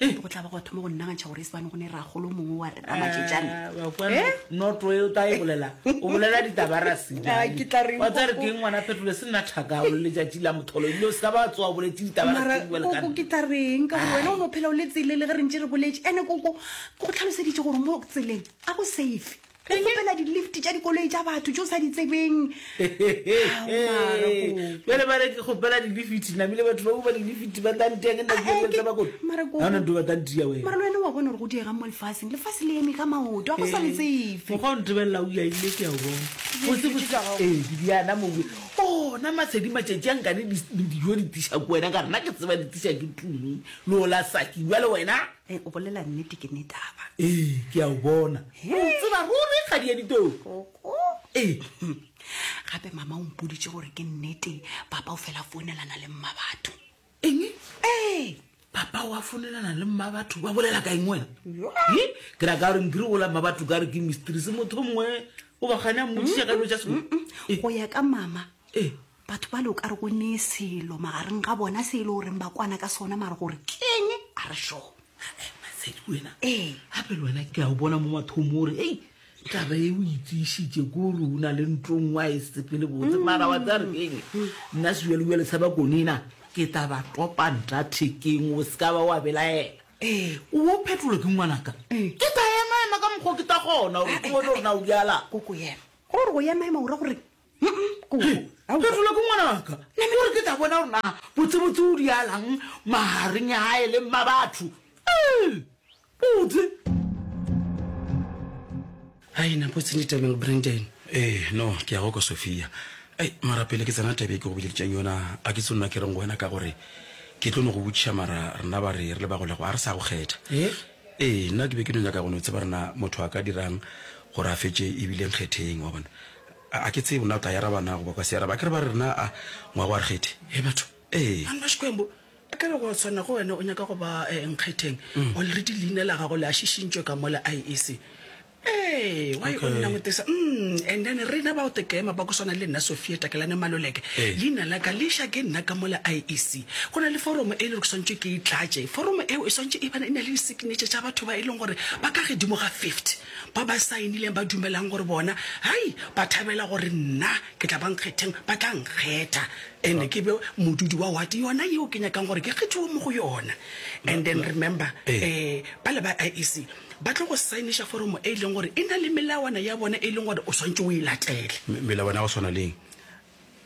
Ee. go tla ba go a thoma go nnagantšha gore e sebane go ne ragolo mongwe wa re ramatšetšane Ah, wa kwa Eh? noto e o ta e bolela o bolela ditabarasi Ah, ke tla reng wa tsa re koko? keng ngwana phetole se nna thakao le letšatši la motholo ebile o se ka ba tsoa o boletse mara ditabarasi koko ke dibalekane tla reng ka gore wena o no phela o le tselele ge re ntse re boletše ande koko ke go tlhaloseditše gore mo tseleng a go safe o kgopela di-lift tša dikoloi tša batho tse o sa di tsebeng bjale ba re ke kgopela di-lifiti namile batho ba kopa di-lifiti ba tla ntea ke ntaeletsa bakoana nto ba tla ntia wena mara le wena wa bona gore go diegang mo lefaseng lefase le eme ka maoto a go sa le tsefe mokgwa o ntebelela o yaile ke a o bona ee ke diana mobe ona masedi matšatši a nkane dijo di tisa ko wena ka rena ke tseba di tisa ke tumi le ola saki bjale wena o bolela nnete ke netaba ee ke a o bona Ke o tseba ruri kgadi ya ditoro. Koko. Ee. Gape mama o mpoditše gore ke nnete papa o fela founelana le mma batho. Eng? Ee. Papa wa founelana le mma batho ba bolela ka eng wena? He? Ke ra ka gore nkiri gola mma batho ka re ke mysteries motho mongwe o bagane a mmotšiša ka dilo tša sekolo. Go ya ka mama. Ee. Batho bale o ka re go nee selo magareng ga bona se e le goreng ba kwana ka sona mare gore keng a re sure. Masedi wena ee gape le wena ke a o bona mo mathomo gore ei taba e o itseisitse ko re o na le ntlong wa e sepele botse mara wa tsare keng nna sebjalebjale sa ba konena ke tla ba topa nta thekeng o se ka ba wa belaela ee o bo phetolo ke ngwanaka ke tla emaema ka mokgwa ke tla gona gore ke bone gore na o bjala koko yena gore go emaema o ra gore Phetolo ke ngwanaka gore ke tla bona gore na botsebotse o dialang magareng ya gae le mma batho botse ai na botse ni tabeng brandon ee eh, no ke ya go kwa sophia ai mara pele ke tsena tabe ke go boleditseng yona a ke tse nna ke reng go wena ka gore ke tlo no go botšiša mara rena ba re re le bagolego a re sa go kgetha ee eh, nna ke be ke no nyaka go no tseba rena motho a ka dirang gore a fetse ebile nkgetheng wa bona A, a ke tsebe na o tla yaraba na goba kwa se yaraba. A ke re ba re na a ngwa go a re kgethe. Hee batho, ee. Mang Mashkwembo? E ka be go swana go wena o nyaka go ba eh, Nkgetheng. Already leina la gago le a šišintšwe ka mola IEC. Ee, why o nna ngotesa? Umm, and then rena ba Otekema ba go swana le nna Sophia Takelane Maloleke, leina la ka le ša ke nna ka mola IEC. Go na le foromo e le gore ke swantšwe ke e tlatše. Foromo eo e swantše e bana e na le di-signature tša batho ba e leng gore ba ka gedimo ga 50. Ba ba saenileng ba dumelang gore bona, hai, ba thabela gore nna ke tla ba nkgetheng, ba tla nkgetha and ke be modudi wa wate yona yeo ke nyakang gore ke kgethiwe mo go yona. And then remember, um bale ba IEC ba tlo go saeniša foromo e e leng gore e na le melawana ya bona e e leng gore o swanetše o e latele. Melawana ya go swana le eng?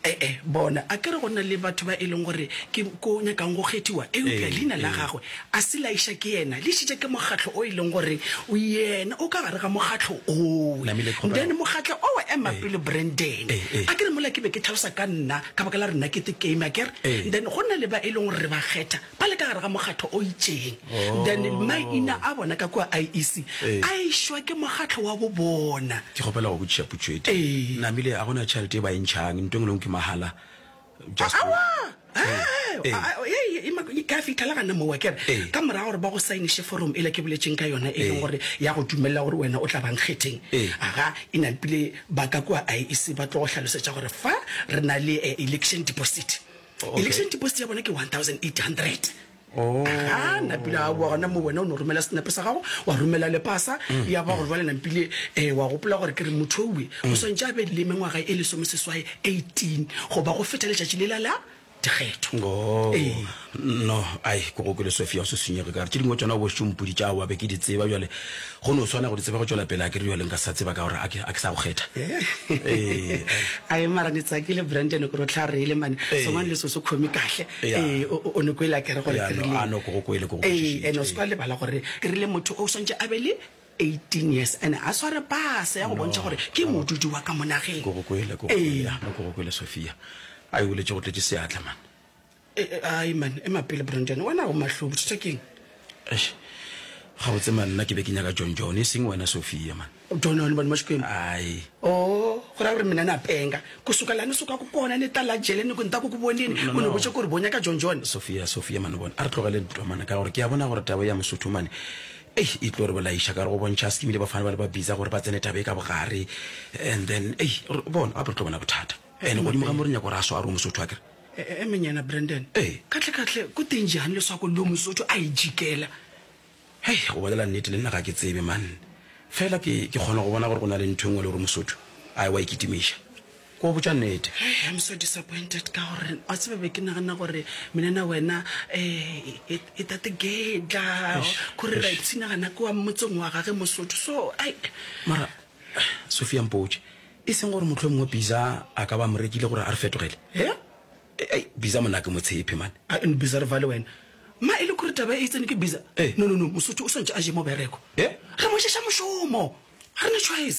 E-e, bona, a ke re go na le batho ba e leng gore ke ko nyakang go kgethiwa, eupša Ee, leina la ee. gagwe a se la iša ke yena, le išitše ke mokgatlo o e leng gore yena o ka gare ga mokgatlo owe. Namile, kgopela. Then mokgatlo owe, ema Ee. pele Brandon, Ee, ee. a ke re mola ke be ke tlhalosa ka nna, ka baka la re nna ke the game, a ke re? Ee. Then go na le ba e leng gore re ba kgetha, ba le ka gare ga mokgatho o itšeng oh. then maina a bona ka kua iec eh. a išwa ke mokgatlho wa bo bona ke kgopela go botšiša putšo e eh. namile a gona tšhelete e ba e ntšhang nto ngwe ke mahala ka fitlhela gana mowa kere ka morago gore ba go sainiše forum e le ke boletseng ka yona e leng gore ya go dumelela gore wena o tla bang kgetheng aga e nampile ba ka kua iec ba tlo go tlhalosetša gore fa re na le eh, election deposit okay. election deposit ya bona ke 1800 oh. ga napile a boa gona mo wena o ne romela senepe sa gago wa romela le pasa mm. ya ba gore jale nampile um eh, wa gopola gore ke re motho owe o mm. swantse a be le mengwaga e lesome seswae 18 goba go feta letšatši le lala dikgetho oh. ee. no ai ko go ke le sofia o se senyege kare tse dingwe tsona bošompodi tša wa be ke di tseba jale Go no swana go di tseba go tšwela pele, a ke re bjale nka se sa tseba ka gore a ke, a ke sa go kgetha. Ee. Ae mara ni tsakile Brandon kore o tla reile mane Ee. songwane le so se khomi kahle Ya. ee o o- o no kwele a kere gore Ya, ke no, rileng a no ko go kwele, ko go ee kwešišitše. ene o se kwa lebala gore ke rile motho o swantše a be le 18 years ene a sware pase ya go No, bontšha gore ke no. modudi wa ka monageng Ko go kwele, ko go kwele, ee ya, no ko go kwele Sophia. A e boletše go tletše seatla man. E, e, ai man ema pele brandon wena o mahlo bothata keng Eish, gabotse man nna ke be ke nyaka john john e seng wena sophia man jona le bone mo xikwembu ai o go raya gore mina ni apenga ku suka laha ni sukaka kona ni ta la jele ni ku ni ta ku ku vonini No, no, u ni no. vutxe ku ri bonya ka john john sophia sophia mane bona a re tlogele ntwa mane ka gore ke a bona gore taba ya mosotho mane ei e tlo re bolaiša ka re go bontšha a sekimile bafana ba le ba bisa gore ba tsene taba e ka bogare and then ei re- bona gape re tlo bona bothata and godimo ga mo re nyako gore a swaro mosotho a kere E-e, Monyena Brandon. Ee. Kahle-kahle, go teng jang leswako leo Mosotho a e jikela? Hei, go bolela nnete, le nna ga ke tsebe, man. Feela ke, ke kgona go bona gore go na le ntho e nngwe le gore Mosotho a ewa e kitimiša. Ke go botša nnete. Hei, I'm so disappointed ka gore, wa tseba, be ke nagana gore Menena wena, eh, e, e tate Gedla, Eish, kore ra eish. ipshinagana kua motseng wa gage Mosotho, so, ai. Mara, Sophia, mpotše, E seng gore mohlomongwe Biza a ka ba mo rekile gore a re fetogele. He? Ei, Biza monna ke mo tshepe, man. A and Biza re vale wena. Ma, e le kore taba e e tsene ke Biza? Ee. No, no, no, Mosotho o swantše a je mobereko. He? Re mo ješa mošomo. Ga re na choice.